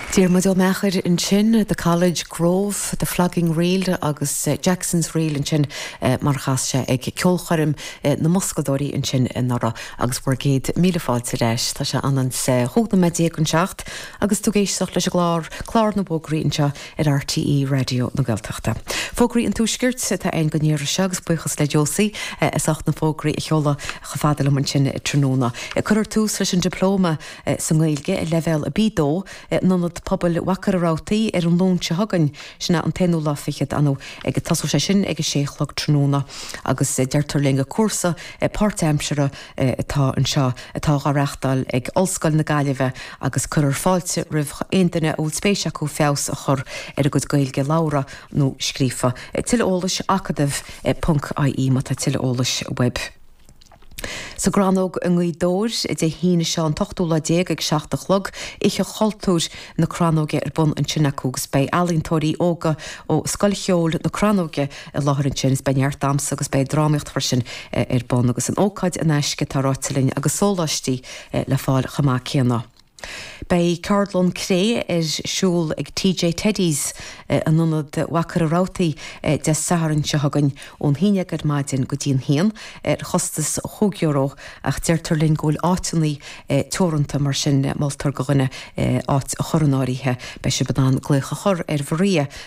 Diarmuid Ó Meachair ansin, The College, Grove, The Flogging Reel agus Jackson's Reel ansin mar a chas sé ag ceolchoirm na mboscadóirí ansin anuraidh agus bhur gcéad míle fáilte leis. Tá sé anois chúig nóiméad déag chun a seacht agus tú ag éisteacht leis an gclár, clár na bhfógraí anseo ar RTÉ Raidió na Gaeltachta. Fógraí an Tuaiscirt atá ann go n-iarraidh seo agus buíochas le Josie as ucht na fógraí a sheoladh chomh fada liom ansin tráthnóna. Cuirfear tús leis an Dioplóma sa nGaeilge, Leibhéal B2, in Ionad Pobail Mhachaire Rabhartaigh ar an Luan seo chugainn, sin é an t-aonú lá fichead, agus tosóidh sé sin ag a sé a chlog tráthnóna agus deirtear linn gur cúrsa páirtaimseartha, atá anseo atá dhá reachtáil ag Ollscoil na Gaillimhe agus cuirfear fáilte roimh aon duine a bhfuil spéis acu feabhas a chur ar a gcuid Gaeilge labhartha nó scríofa. Tuilleadh eolais, acadamh ponc ie má tá tuilleadh eolais uaibh. Sa gCrannóg i nGaoth Dobhair, Dé hAoine seo an t-ochtú lá déag ag seacht a chlog, Oíche Chultúir na Crannóige ar bun ansin acu agus beidh ealaíontóirí óga ó Scoil Cheoil na Crannóige i láthair ansin is beidh neart damhsa agus beidh drámaíocht freisin ar bun agus an ócáid in aisce atá ráite linn agus sóláistí le fáil chomh maith céanna. Beidh ceardlann cré ar siúl ag Tigh Teddy's in ionad Mhachaire Rabhartaigh Dé Sathairn seo chugainn ón haon déag ar maidin go dtí an haon ar chostas chúig euro ach deirtear linn go bhfuil áiteanna teoranta mar sin moltar do dhuine áit a chur in áirithe. Beidh sibh in ann glaoch a chur ar Mharia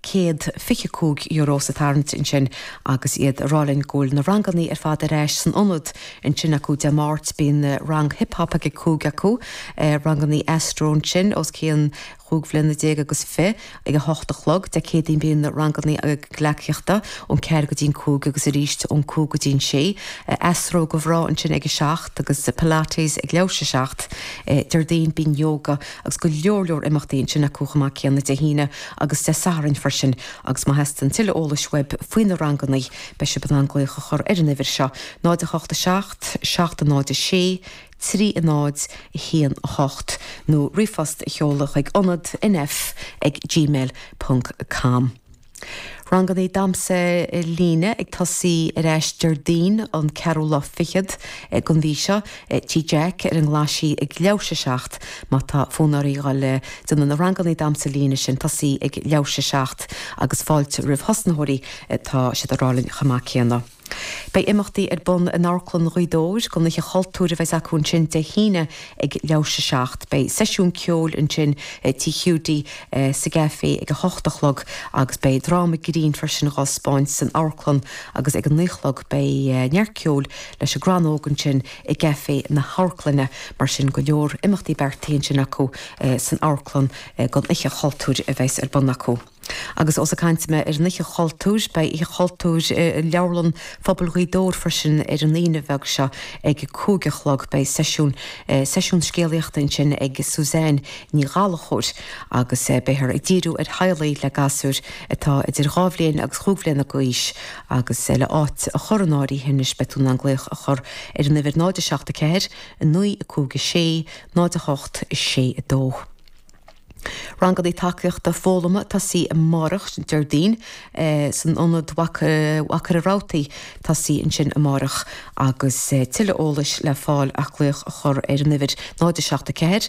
céad fiche cúig euro sa tarraingt ansin agus iad a rá linn go bhfuil na rangannaí ar fad ar ais san ionad ansin acu Dé Máirt bíonn rang hip hop ag a cúig acu, rangannaí Astro ansin os cionn chúig bhliana déag agus fir ag a hocht a chlog Dé Céadaoin bíonn rangannaí gleacaíochta ón ceathair go dtí'n cúig agus arís ón cúig go dtí'n sé Astro do mhná ansin ag a seacht agus Pilates ag leathuair tar éis a seacht Déardaoin bíonn Yoga agus go leor leor imeachtaí ansin acu chomh maith céanna Dé hAoine agus Dé Sathairn freisin agus má theastaíonn tuilleadh eolais uaibh faoi na rangannaí beidh sibh in ann glaoch a chur ar an uimhir seo, 087 706 3018 nó ríomhphost a sheoladh chuig ionad nf ag gmail ponc com. Rangannaí damhsa líne ag tosaí ar ais Déardaoin an ceathrú lá fichead den mhí seo. Tigh Dic ar an nGlaisigh ag leathuair tar éis a 7 má tá fonn oraibh dul ag déanamh na rangannaí damhsa líne sin tosaí ag leathuair tar éis a 7 agus fáilte roimh thosnaitheoirí tá siad ag rá linn chomh maith céanna. Beidh imeachtaí ar bun in Amharclann Ghaoth Dobhair don Oíche Chultúir a bheidh's acu ansin Dé hAoine ag leathuair tar éis 7. Beidh seisiún ceoil ansin i Tigh Hiúdaí sa gCafé ag a hocht a chlog agus beidh dráma grinn freisin dhá spáint san amharclann agus ag a naoi chlog beidh neart ceoil leis an gCrannóg ansin i gCafé na hAmharclainne. Mar sin go leor imeachtaí beartaithe ansin acu san amharclann don Oíche Chultúir a bheidh's ar bun acu. Agus ós ag caint mé ar an Oíche Chultúir, beidh Oíche Chultúir i Leabharlann Phobail Ghaoth Dobhair freisin ar an Aoine bheag seo ag a cúig a chlog. Beidh seisiún, seisiún scéalaíochta ansin ag Suzanne Ní Ghallachóir agus beifear ag díriú ar theaghlaigh le gasúir atá idir dhá bhliain agus cúig bliana d'aois agus le áit a chur in áirithe anois beidh tú in ann glaoch a chur ar an uimhir 074 956 08 62. Ranganna Tacaíochta Foghlama ag tosaí amárach, Déardaoin, san Ionad i Machaire Rabhartaigh ag tosaí ansin amárach agus tuilleadh eolais le fáil ach glaoch a chur ar an uimhir 07 4.